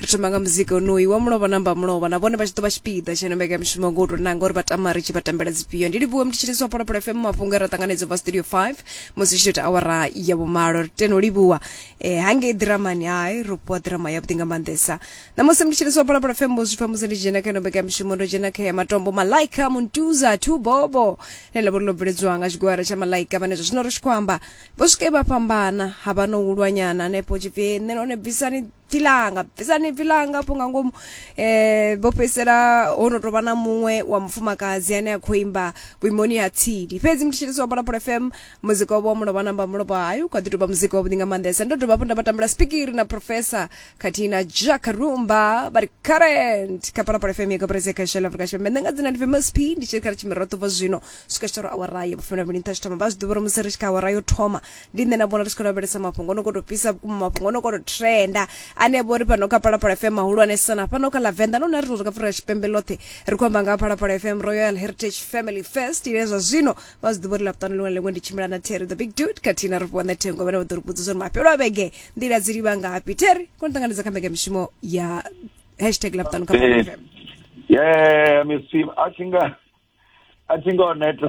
ri thoma nga muzika onoyu wa mulovha na mbamulovha na vhone vha tshi ḓo vha tshipiḓa tsha ino mbeka mishumo ngo u tou nanga uri vha tama ri tshi vha tambela dzifhio ndi livhuwe mutshitshisi wa pholopolo fm mafhungo e ra ṱanganedza bva studio 5 musi tshi tou ita awara ya vhumalo ri teno livhuwa eh, hangei ḓiramani hai ro fhiwa ḓirama yavhuḓi nga maanḓesa ṋamusi mutshitshisi wa pholopolo fm vho zwi pfa musi ndi dzhena kha ino mbeka mishumo ndo dzhena kha ya matombo malaika muntuza two bobo ḽe ḽa vho ri ḽo bveledzwa nga tshigwara tsha malaika vhane zwa zwino ri tshi khou amba vho swike vha fhambana ha vha no hulwanyana hanefho tshipfi nṋe none bvisani bvi langa bvisani bvi langa afho nga ngomu eh vho fhedzisela ho no tovha na muṅwe wa mufumakadzi ane a khou imba vhuimoni ha tsini fhedzi mutshitshisi wa phalaphala fm muzika wavho wa mulovha namba mulovha hayo kha ḓi tovha muzika wavhuḓi nga maanḓesa ndo dovha hafhu nda vha tambela spikiri na professor khathihi na jack rumba vha ri current kha phalaphala fm ya kabarese kha shela afrika tshipembe nṋe nga dzina ndi famous p ndi tshi ri kha ri tshimirato vha zwino swika tshitoro awara ya vhufumi na vhili nṱha tshithoma vha zwi ḓivha uri musi ri tshi kha awara yo thoma ndi nṋe na vhona ri tshi khou lavhelesa mafhungo ono koto fhisa vhukuma mafhungo ono koto trenda ane vho ri fhano kha phalaphala fm mahulwanesa na fhano kha lavenda no na ri ri ka fura tshipembe ḽoṱhe ri khou amba nga phalaphala fm royal heritage family fest ine zwa zwino vha zwi ḓivha uri ḽapuṱano ḽiṅwe na ḽiṅwe ndi tshimbila na terry the big dude khathihi na rufhiwa na thengo vhane vha ḓo ri vhudza zwa uri mafhelo a vhege nḓila dzi livha ngafhi terry koni ṱanganedza kha mbekamishumo ya hashtag ḽapuṱano kha phalaphala fm yeah miss tim a thinga a thinga o neta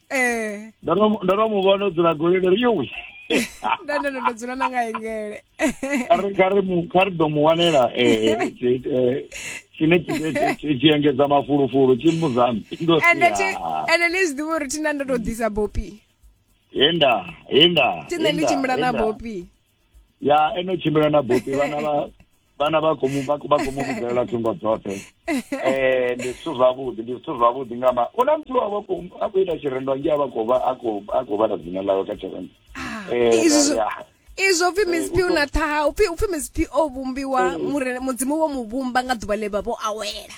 eh ndo no ndo no mu vhona o dzula goli ndo ri yowi nda ndo ndo dzula na nga engele kha ri- kha ri mu- kha ri ḓo mu wanela eh, tshi- eh, tshine tshi- tshi- tshi- tshi engedza mafulufulu tshi mu zambi ndo ri, ende thi "Ah, ende ni zwi ḓivha uri thina ndo to ḓisa bopi henda henda thina ni henda, tshimbila na henda." bopi ya eno tshimbila na bopi vhana vha vhana vha khou mu vha khou mu vhidzelela thungo dzoṱhe eh ndi zwithu zwavhuḓi ndi zwithu zwavhuḓi nga ma u na muthu a vha khou a khou ita tshirendo nge a vha khou vha a khou a khou vhala dzina ḽawe kha tshirendo ah, eh izwo upfi eh, msp u na ṱhaha upfi upfi msp o vhumbiwa eh. mudzimu wo mu vhumba nga ḓuvha ḽe vha vho awela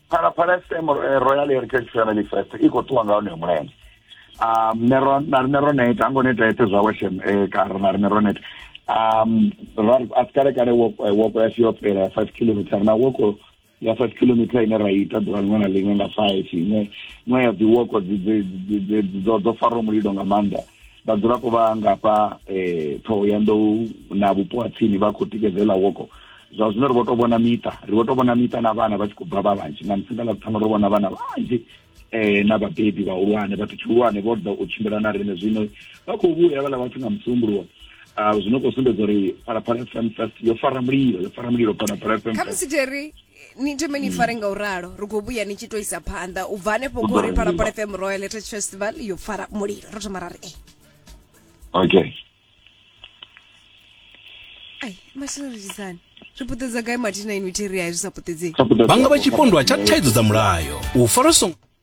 phalaphala fm eh, royal heritage family fest i khou ṱuwa nga honoyo mulenzhe um ne ro na rine ro neta hango neta ete zwawe shem eh, kara na rine ro neta um ra a si kale kale woko eh, woko yashu yo fhela ya five kilometer na woko ya five kilometer ine ra ita ḓuvha liṅwe na liṅwe nga five iṅwe iṅwe ya dzi woko dzi- dzi- dzi- dzi- dzo dzo faraho mulilo nga maanḓa vhadzulapo vha ngafha eh ṱhoho ya nḓou na vhupo ha tsini vha khou tikedza iḽa woko zwa zwino ri vho tou vhona miṱa ri vho tou vhona miṱa na vhana vha tshi khou bva vha vhanzhi nga musi nga ḽa ṱhanu ro vhona vhana vhanzhi eh na vhabebi vhahulwane vhathu tshihulwane vho ḓa u tshimbila na riṋe zwino vha khou vhuya vhala vhathu nga musumbuluwo uh, zwino khou sumbedza uri phalaphala fm fest yo fara mulilo yo fara mulilo phalaphala fm khamusi jerry ni thome ni fare nga u ralo ri khou vhuya ni tshi to isa phanḓa u bva hanefho kho ri phalaphala fm royal heritage festival yo fara mulilo ro thoma ra ri e okay ai masina ri tshisani ri puṱedza gai mathina inwi theri hai zwi sa puṱedzei vhanga vha tshipondwa tsha thaidzo dza mulayo u fara songo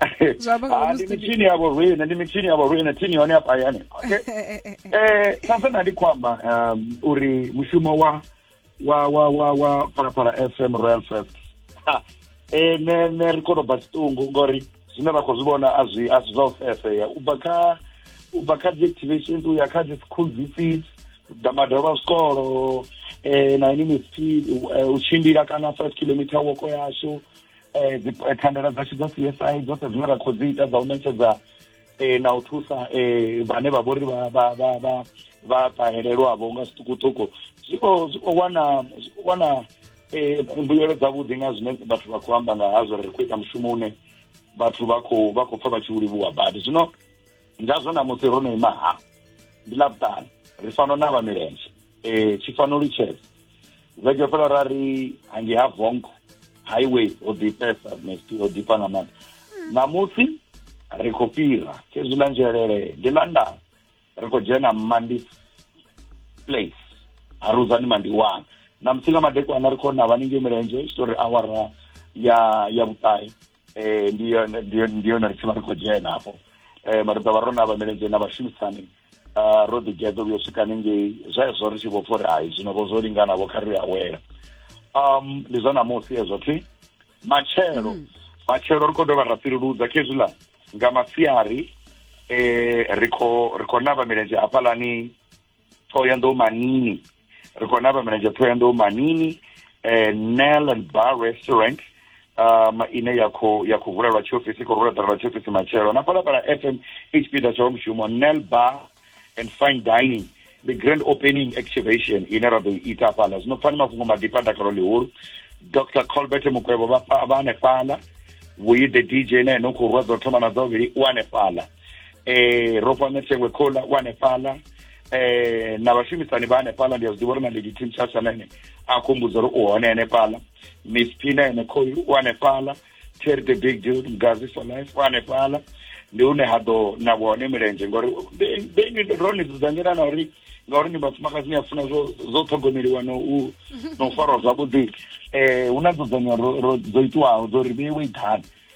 Ah, ndi mitshini ya vhorine ndi mitshini ya vhorine thini yone ya payane okay eh sasa na ndi kwamba um uri mushumo wa wa wa wa wa phalaphala fm royal fest eh ne ne ri kono ba situngu ngori zwine ra khou zwi vhona a zwi a zwi zwa u fefea u bva kha u bva kha deactivations u ya kha dzi school visits da madalo a zwikolo eh na ini mipfi eh, u tshimbila kana 5 kilometer woko yashu eh, eh, thandela dzashu dza csi dzoṱhe zwine ra khou dzi ita dza u ṋetshedza um na u thusa um vhane vha vhori vha ṱahelelwavho nga zwiṱukuṱuku zwi khou wana wana um mbuyelo dzavhuḓi nga zwine vhathu vha khou amba nga hazwo ri khou ita mushumo une vhathu vha khou vha khou pfa vha tshi u livhuwa badi zwino ngazwo na musi ro no ima ha ndi ḽa vhuṱanu ri fano na vha milenzhe um e, tshi fano litshedza vhege fhela ra ri hangi ha vongo highway ho ḓifhesa mesti ho ḓifha nga maanḓa ṋamusi ri khou fhira khezwi ḽa nzhelele ndi ḽa ndana ri khou dzhena mandi place ha ruzani mandi wana ṋamusi nga madekwana ri khou na vhaningei milenzhe tshitori awara ya ya vhuṱahe eh ndi yone ndi yone ndi yone ri tshivha ri khou dzhena hafho eh mara ḓovha ro na vha milenzhe na vhashumisani ah, ro ḓi geḓo vhuyo swika hanengei zwezwo ri tshi vho pfa uri hai zwino vho zwo lingana vho kha ri awela um ndi zwa ṋamusi hezwo thi matshelo matshelo ri khou dovha ra fhiruludza khezwiḽa nga masiari eh ri khou ri khou navha milenzhe hafhaḽani Thohoyanḓou Manini ri khou navha milenzhe Thohoyanḓou Manini eh, Nell and Bar Restaurant um ine ya khou ya khou vulelwa tshiofisi khou rula ṱalelwa tshiofisi matshelo na palapala fm tshipiḓa tsha wa mushumo Nell Bar and Fine Dining the grand opening activation ine ra ḓo ita hafhaḽa zwino pfani mafhungo maḓifha a dakalo ḽihulu dr colbert mukwevho vha hanefhaḽa vhuyi the dj na ene u khou rwa dza u thoma na dza vhuvhili u hanefhaḽa eh Ropa Netsekwe Khola wa Nepala eh na vhashumisani vha Nepala ndi a zwi ḓivha uri na Lady Tim Chasha na ene a khumbudza uri u hone ya Nepala Miss Pina ene khoyu wa Nepala Terry the Big Dude Mgazi for life wa Nepala ndi hune ha ḓo na vhone milenzhe ngori beni ro ni dzudzanyela na uri ngauri ni vhafumakadzi ni a funa zwo zwo ṱhogomeliwa no u no farwa zwavhuḓi eh hu na dzudzanyo ro dzo itiwaho dzo ri vheiwe i ḓani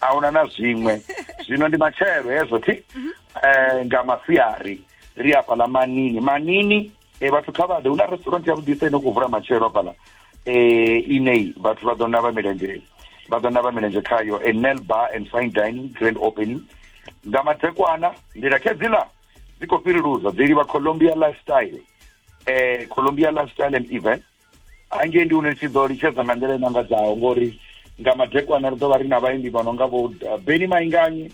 ahuna na zwiṅwe zwino ndi matshelo hezwo thi mhm. eh nga masiari ri hafha la manini manini eh vhathu kha vha ḓe una restaurant ya vhudisa ino ku vula matshelo hafha la eh inei vhathu vha ḓo na vha milenzhe vha ḓo na vha milenzhe khayo a nail bar and fine dining grand opening nga matekwana ndi la khedzila dzi ko fhiriluza dzi livha Colombia lifestyle eh Colombia lifestyle and event hangei ndi hune tshi ḓo litshedza nga nḓila i mangadzaho ngori nga madekwana ri ḓo vha ri na vhaimbi vha no nga vho uh, beni mainganyi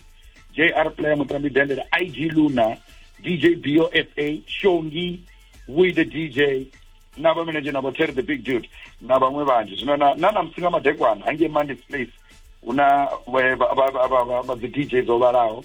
jr player mutambi dendele ig luna dj bofa shongi we the dj na vhamenedzhe na vho terry the big dude na vhaṅwe vhanzhi zwino na na namusi nga madekwana hangei mondays place hu na vha dzi dj dzo vhalaho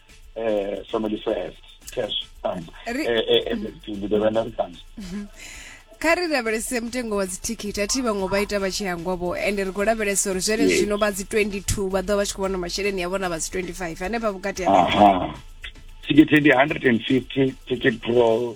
eh some di fes cash um eh ndi the vendor comes kha ri lavhelese mutengo wa dzithikhithi a thi vhaṅwe vha ita vha tshi hangwa vho ende ri khou lavhelesa uri zwene Yes. zwino vha dzi 22 vha ḓo vha tshi khou vhona masheleni a vhona vha dzi 25 hanefha vhukati ha aha ticket ndi 150 ticket pro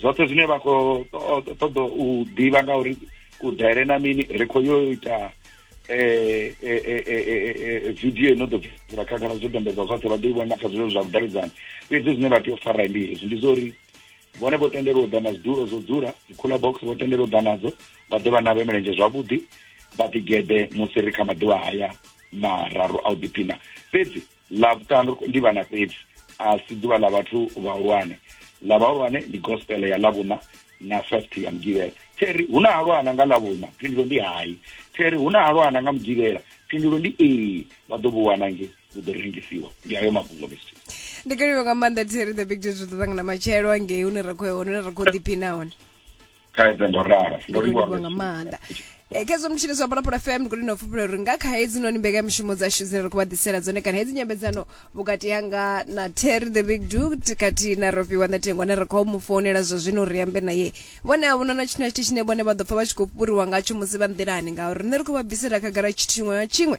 zwoṱhe zwine vha khou ṱoḓa u ḓivha nga uri ku daire na mini ri khou yo ita eh, eh, eh, video ino ḓo bvela khagala zwo dombedzwa zwoṱhe vha ḓo i vhona kha zwilelo zwa vhudavhidzani fhedzi zwine vha tea u fara ndi hezwi ndi zwa uri vhone vho tendelwa u ḓa na zwidulo zwo dzula cooler box vho tendelwa u ḓa nadzo vha ḓe vha navhe milenzhe zwavhuḓi vha ḓigeḓe musi ri kha maḓuvha haya mararu a u ḓiphina fhedzi ḽa vhuṱanu ndi vhana fhedzi a si ḓuvha ḽa vhathu vhahulwane ḽa vhahulwane ndi gospel ya ḽa vhuna na first ya mugivhela theri hu na halwana nga ḽa vhuna phindulo ndi hai theri hu na halwana nga mugivhela phindulo ndi ee vha ḓo vhu wana nge vhu ḓo rengisiwa ndi ayo mafhungo mr ndi kaliwe nga maanḓa theri the big jet ri ḓo ṱangana matshelo angei hune ra khou hone ra khou ḓiphina hone khaidzo ndo ralo ndo livhuwa nga maanḓa eh, khezwo mutshini zwa phalaphala fm ndi kulino fhufhula uri nga kha hedzi noni mbekanyamushumo dzashu dzine ri khou vha ḓisela dzone kana hedzi nyambedzano vhukati yanga na terry the big dut kati na rofiwa na tengwa ne ri khou mu founela zwa zwino ri ambe naye vhone a vhona na tshithu na tshithu tshine vhone vha ḓo pfa vha tshi khou fhuriwa ngatsho musi vha nḓilani ngauri rine ri khou vha bvisela khagala tshithu tshiṅwe na tshiṅwe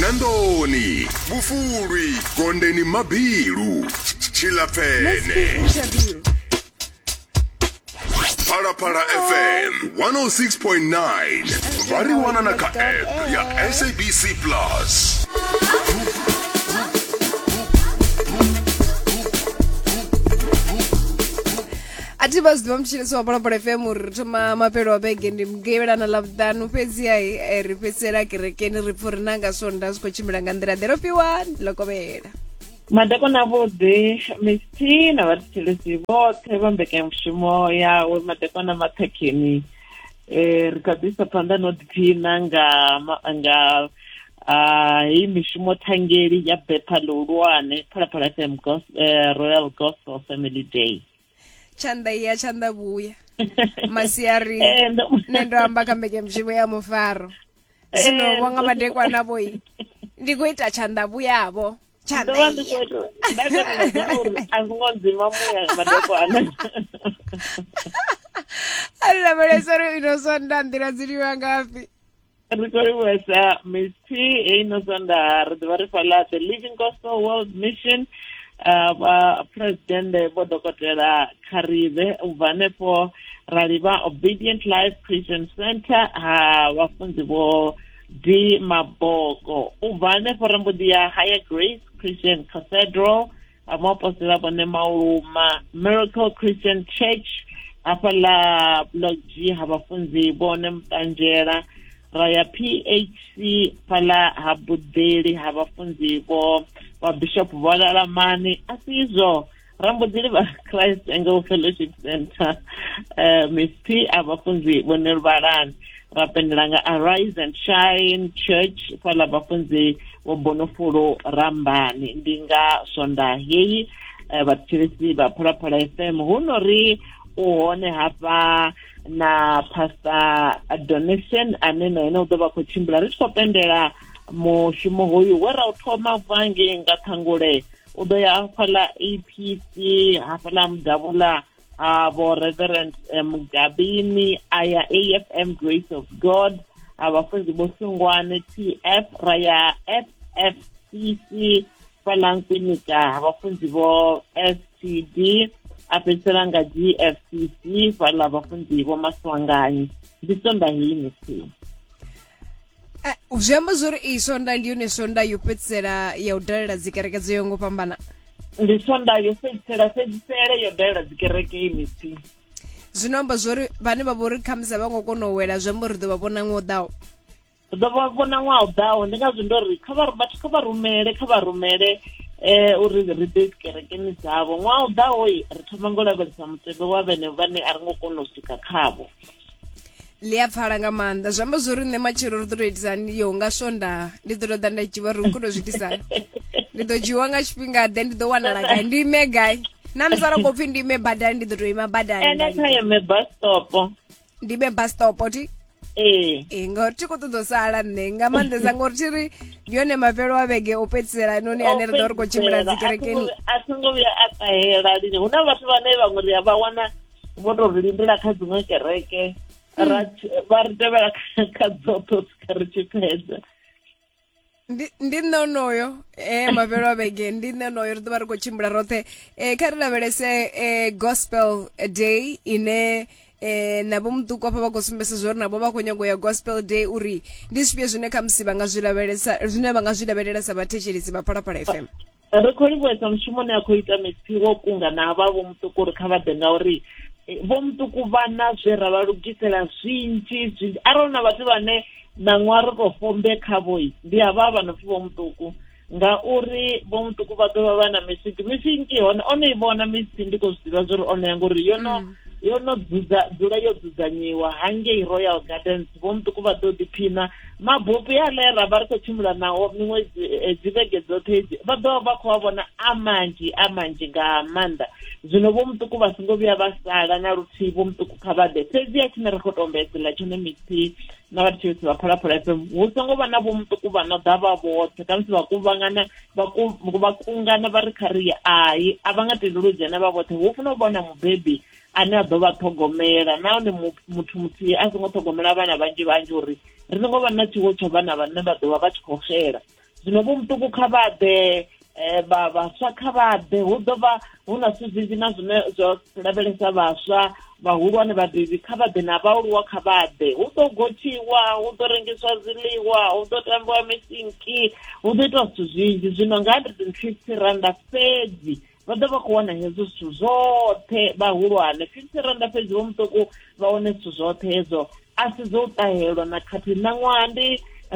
nandoni vhufulwi gondeni mabilu tshilapfene phalaphala fm 106.9 vha ri wana na kha app ya sabc plus a thi vha zwiḓivha mutshini si wa bolobolo fm uri ri thoma mafhelo a vhege ndi mugevhelana ḽa vhuṱanu fhedziha eh, ri fhedzisela kerekeni ri pfha uri na nga swonda zwi khou tshimbila nga nḓila ḓe ro fhiwa lokovhela madakwana avhuḓi misti na vhathetshelesi vhoṱhe vha mbekanyamushumo yawe madakwana mathakheni um ri kha ḓisa phanḓa no ḓiphina nga nga uh, hei mishumo thangeli ya betha ḽihulwane phalaphala fm gos, uh, royal gospel family day tshanḓa iya tshanḓa vhuya masiari eh, nṋe ndo amba kha mbekemushumo ya mufaro eh, zwino vho nga madekwana vhoi ndi khou ita tshanḓa vhuyavho a ri lavhelesa uri ino sonda nḓila dzi livha ngafhi ri khou livhuwesa miss p heyi no sondaha ri ḓivha ri fhaḽa the living gospel world mission uh, vha presidende vho dokotela kharibe u bva hanefho ra livha obedient life christian center ha vhafunzi vho d maboko u bva hanefho ri mbo ḓi ya higher grace christian cathedral a muapostola vho Nemauluma Miracle Christian Church hafha ḽa block G ha vhafunzi vho ne muṱanzhela ra ya PHC fhala ha buḓeli ha vhafunzi vho vha bishop vho lalamani a si izwo ra mbo ḓi livha christ angle fellowship center um eh, mp a vhafunzi vho ne luvhalani ra pendela nga arise and shine church fhaḽa vhafunzi vho bonofulu rambani ndi nga swonda heyi eh, vhathetshelesi vha phalaphala fm hu no ri u hone hafha na pastor donation ane na ene u ḓo vha khou tshimbila ri tshi khou pendela mushumo hoyu we ra u thoma vange nga ṱhangule u ḓo ya hafhaḽa apc hafhaḽa mudavula a vho reverend mugabini a ya afm grace of god a vhafunzi vho sungwane tf ra ya ffcc fhalankwinikaa vhafunzi vho std a fhedzisela nga gfcc fhala vhafunzi vho maswanganyi ndi sonda heyi misimu eh, zwi amba zwori iyi sonda ndi yone sonda yo fhedzisela ya u dalela dzikereke dzo yo ngo fhambana ndi sonda yo fhedzisela fhedzisele yo dalela dzikereke i misi zwino amba zwori vhane vha vhori khamusi a vha ngo kona u wela zwi amba uri ḓo vha vhona ṅwe u ḓaho ri ḓo vha vhona ṅwaha u ḓaho ndi ngazwo ndo ri kha vha vhathu kha vha rumele kha vha rumele um uri ri ḓe dzikerekeni dzavho ṅwaha u ḓaho ri thoma ngo lavhelesa mutevhe wa vhene vhane a ri ngo kona u swika khavho ḽi a pfala nga maanḓa zwi amba zwori nṋe matshelo ri ḓo to itisani yo nga swonda ndi ḓo to ḓa nda dzhiwa ri khou to zwi itisa ndi ḓo dzhiwa nga tshifhinga ḓe ndi ḓo wanala gai ndi ime gai na musi ara khou pfi ndi ime badani ndi ḓo to ima badani ene kha ime bus stop ndi ime bus stop ti ee ee ngauri thi khou ṱoḓa u sala nṋe nga maanḓesa ngauri thi ri ndi yone mafhelo a vhege o fhedzisela noni ane ri ḓo ri khou tshimbila dzikerekeni a songo vhuya a ṱahela lini hu na vhathu vhane vhaṅwe ri a vha wana vho to ri lindela kha dziṅwe kereke hmm. ra vha ri tevhela kha dzoṱhe swika ri tshi fhedza ndi ndi nṋe onoyo eh mavhelo a vhege ndi nṋe onoyo ri ḓovha ri khou tshimbila roṱhe eh kha ri lavhelese eh gospel day ine eh navho muṱuku afha vha khou sumbesa zwa uri navho vha khou nyago ya gospel day uri ndi zwifhio zwine khamusi vha nga zwi lavhelesa zwine vha nga zwi lavhelelesa vhathetshelesi vha phalaphala fm ri khou livhuwesa mushumo une a khou ita mipfi wo kunga na vha vho muṱuku uri kha vha ḓe ngauri eh, vho muṱuku vha na zwe ra vha lugisela zwinzhi zwinzhi arali na vhathu vhane ṋaṅwa ri khou fombe khavhoi ndi havha vha no pfi vho muṱuku ngauri vho muṱuku vha ḓovha vha na misiki misiki hone o no i vhona misi ndi khou zwi ḓivha zwa uri o no ya ngori yo no mm. yo no dzula yo dzudzanyiwa hangei royal gardens vho muṱuku vha ḓo ḓiphina mabopi ale ra vha ri khou tshimbila nao miṅwe eh, dzivhege dzoṱhe hedzi vha ḓo vha khou a vhona a manzhi a manzhi nga maanḓa zwino vho muṱuku vha songo vhuya vha sala na luthihi vho muṱuku kha vha ḓe fhedzi a tshine ri khou tombedzela tshone misi na vhathu tshivhisi vha phalaphala fm hu songo vha na vho muṱuku vha no ḓa vha vhoṱhe khamusi vha kuvhangana vha kungana vha ri kha ri hai a vha nga tendeli u dzhena vha vhoṱhe hu funa u vhona mubebi ane a ḓo vha ṱhogomela nahone muthu muthihi a songo ṱhogomela vhana vhanzhi vhanzhi uri ri songo vha na tshiwo tsho vhana vhane vha ḓovha vha tshi khou xela zwino vho muṱuku kha vha ḓe eh, vha vhaswa kha vha ḓe hu ḓo vha hu na zwithu zwinzhi na zwine zwo lavhelesa vhaswa vhahulwane vhabebi kha vha ḓe na vhaaluwa kha vha ḓe hu ḓo gotshiwa hu ḓo rengiswa zwiḽiwa hu ḓo tambiwa misinki hu ḓo itiwa zwithu zwinzhi zwino nga hundred and fifty randa fhedzi vha ḓo vha khou wana hezwo zwithu zwoṱhe vhahulwane fifty randa fhedzi vho muṱuku vha wane zwithu zwoṱhe hezwo a si zwo u ṱahelwa na khathihi ṋaṅwaha ndi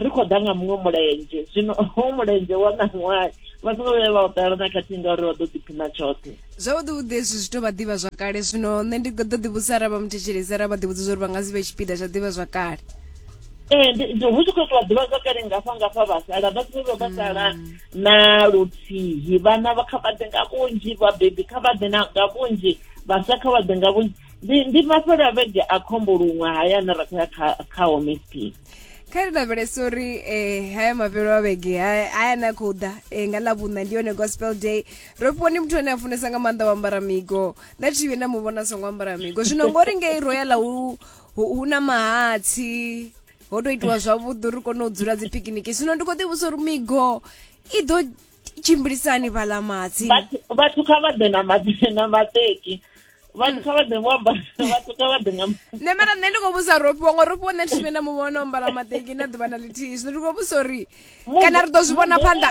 ri khou ḓa nga muṅwe mulenzhe zwino ho mulenzhe wa ṋaṅwaha vha songo vhuya vha u ṱahelwa na khathihi ngauri vha ḓo ḓiphina tshoṱhe zwavhuḓi vhuḓi hezwi zwi tou vha ḓivha zwa kale zwino nṋe ndi ḓo ḓi vhudzisa arali vha mu thetshelesi arali vha ḓi vhudza uri vha nga si vhe tshipiḓa tsha ḓivha zwa kale ee hu tshi khou itiwa ḓivha zwa kale ngafha ngafha vha sala vha songo vha sala mm. na luthihi vhana kha vha ḓe nga vhunzhi vhabebi kha vha ḓe nga vhunzhi vhaswa kha vha ḓe nga vhunzhi ndi ndi mafhelo a vhege a khombo luṅwe haya ane ra khou ya kha kha homesp kha ri lavhelesa uri um eh, haya mafhelo a vhege haya na khou ḓa um nga ḽavhuṋa ndi yone gospel day ro fhiwa ni muthu ane a funesa nga maanḓa u ambara migo nda thi vhe nda mu vhona songo ambara migo zwino ngori ngei ro ya ḽa hu na mahatsi ho to itiwa zwavhuḓi ri kone u dzula dzi picnic zwino ndi kho ḓi vhusa uri migo i ḓo tshimbilisani vhala matsi vhathu kha vha ḓe na matsi na mateki vhathu kha vha ḓe vho amba vhathu kha vha ḓe nga nṋe mara nṋe ndi khou vhusa rofhiwa ngo rofhiwa nṋe thivhe na muvhona o mbala mateki na ḓuvha na ḽithihi zwino ndi khou vhusa uri kana ri ḓo zwi vhona phanḓa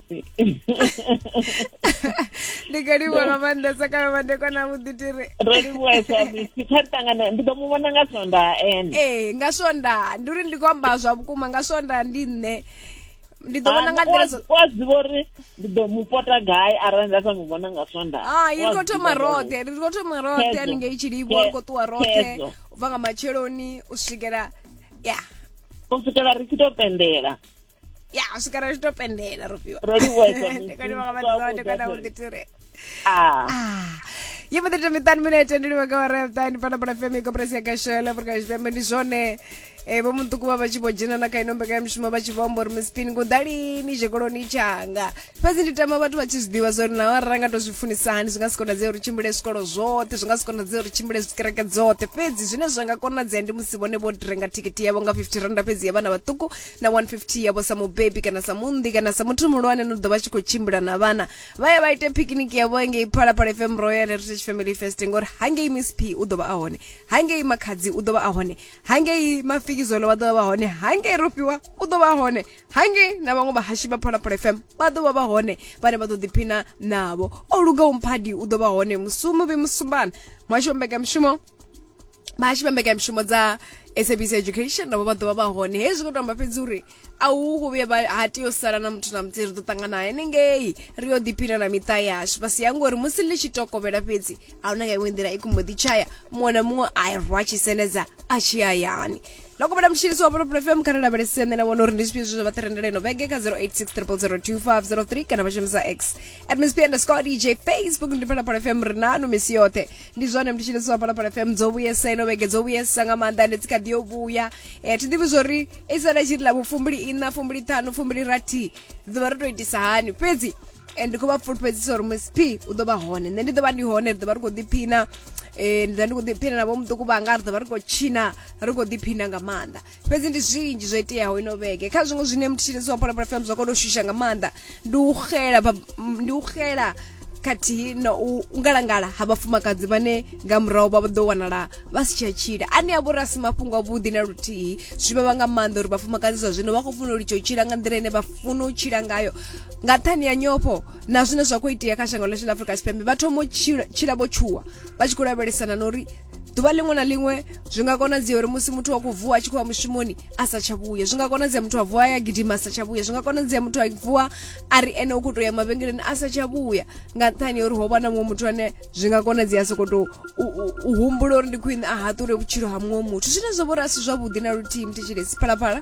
ndi nga livhuwa nga maanḓesa kana madekwana avhuḓi ti ri ro livhuwa samisi kha ṱangana ndi ḓo mu vhona nga swondaa ene ee nga swondaa ndi uri ndi khou amba zwa vhukuma nga swondaa ndi nṋe ndi ḓo vhona nga nḓila wa zwiva uri ndi ḓo mu pota gai arali nda sa mu vhona nga swonda hai ri khou thoma roṱhe ri khou thoma roṱhe haningei tshilivho ri khou ṱuwa roṱhe u bva nga matsheloni u swikela ya u swikela ri tshi tou pendela ya u swika ri tshi to pendela rufhiwa ro livhuesa ndi kone vha vhathu zwa ndi kone u ḓi ture ah. ah ye mbo ḓi ita miṱani minete ndi livha nga wa reṱani fana bola fm ikoporasi ya gashela afrika tshipembe ndi zwone eh, vho muṱuku vha vha tshi vho dzhena na kha ino mbekanyamushumo vha tshi vho amba uri mispini ngudalini tshikoloni tshanga fhedzi ndi tama vhathu vha tshi zwi ḓivha zwa uri naho arali ra nga to zwi funisa hani zwi nga si konadzea uri tshimbile zwikolo zwoṱhe zwi nga si konadzea uri tshimbile zwikereke dzoṱhe fhedzi zwine zwa nga konadzea ndi musi vhone vho renga thikhithi yavho nga 50 randa fhedzi ya vhana vhaṱuku na 150 yavho sa mubebi kana sa munnḓi kana sa muthu muhulwane no ḓo vha tshi khou tshimbila na vhana vha ya vha ite picnic yavho engei phalaphala fm royal heritage family fest ngori hangei miss p u ḓo vha a hone hangei makhadzi u ḓo vha a hone hangei mafikizolo vha ḓo vha vha hone hangei rofhiwa u ḓo vha a hone hangei na vhaṅwe vhahashi vha phalaphala fm vha ḓo vha vha hone vhane vha ḓo ḓiphina navho o lugaho mphadi u ḓo vha hone musumu vhe musumbana muhasho wa mbekanyamushumo vha tshi vhambeka mishumo dza sabc education navho vha ḓovha vha hone hezwi khou tamba fhedzi uri a hu khou vhuya ha tea u sala na muthu na muthihi ri ḓo ṱangana henengei ri yo ḓiphina na miṱa yashu vha si ya ngori musi ḽi tshi tokovhela fhedzi a huna nga iṅwe nḓila i kumbo ḓi tshaya muṅwe na muṅwe a rwa tshi senedza a tshi hayani lokobela mutshilisi wa volopolo fm kha ri lavhelese nṋe na vhona uri ndi zwifhio zwe zwa vha ṱirendela ino vhege kha 0860002503 kana vha shumisa x at msp underscore dj facebook ndi phalaphala fm ri nanu misi yoṱhe ndi zwone ndi tshine zwa phalaphala fm dzo vhuyesa ino vhege dzo vhuyesa nga maanḓa ende dzi kha ḓi yo vhuya um thi ḓivhi zwori i sala tshi ri lavo fumbili ina fumbili ṱhanu fumbili rathi ḓivha ri to itisa hani fhedzi and ndi khou vha fulufhedzisa uri msp u ḓo vha hone nṋe ndi ḓo vha ndi hone ri ḓo vha ri khou ḓiphina um ndi ḓa ndi khou ḓiphina na vho muṱuku vhanga ri ḓo vha ri khou tshina ri khou ḓiphina nga maanḓa fhedzi ndi zwinzhi zwo iteaho ino vhege kha zwiṅwe zwine mutshitshisi wa phalaphala fm zwa kona u shusha nga maanḓa ndi u xela ba- m- ndi u xela khathihi na u u ngalangala ha vhafumakadzi vhane nga murahu vha ḓo wanala vha si tsha tshila ane a vhori a si mafhungo avhuḓi na luthihi zwi vhavha nga maanḓa uri vhafumakadzi zwa zwino vha khou funa u litsha u tshila nga nḓila ine vha funa u tshila ngayo nga nṱhani ya nyofho na zwine zwa khou itea kha shango ḽashu ḽa afrika tshipembe vha thoma u tshila- tshila vho tshuwa vha tshi khou lavhelesana na uri ḓuvha ḽiṅwe na ḽiṅwe zwi nga konadzea uri musi muthu wa khou vuwa a tshi khou ya mushumoni a sa tsha vhuya zwi nga konadzea muthu a vuwa ya gidima a sa tsha vhuya zwi nga konadzea muthu a vuwa a ri ene u khou tou ya mavhengeleni a sa tsha vhuya nga nṱhani ya uri ho vha na muṅwe muthu ane zwi nga konadzea a sokou tou u humbula uri ndi khwine a haṱule vhutshilo ha muṅwe muthu zwine zwo vhori a si zwavhuḓi na luthihi mthetshelesi phalaphala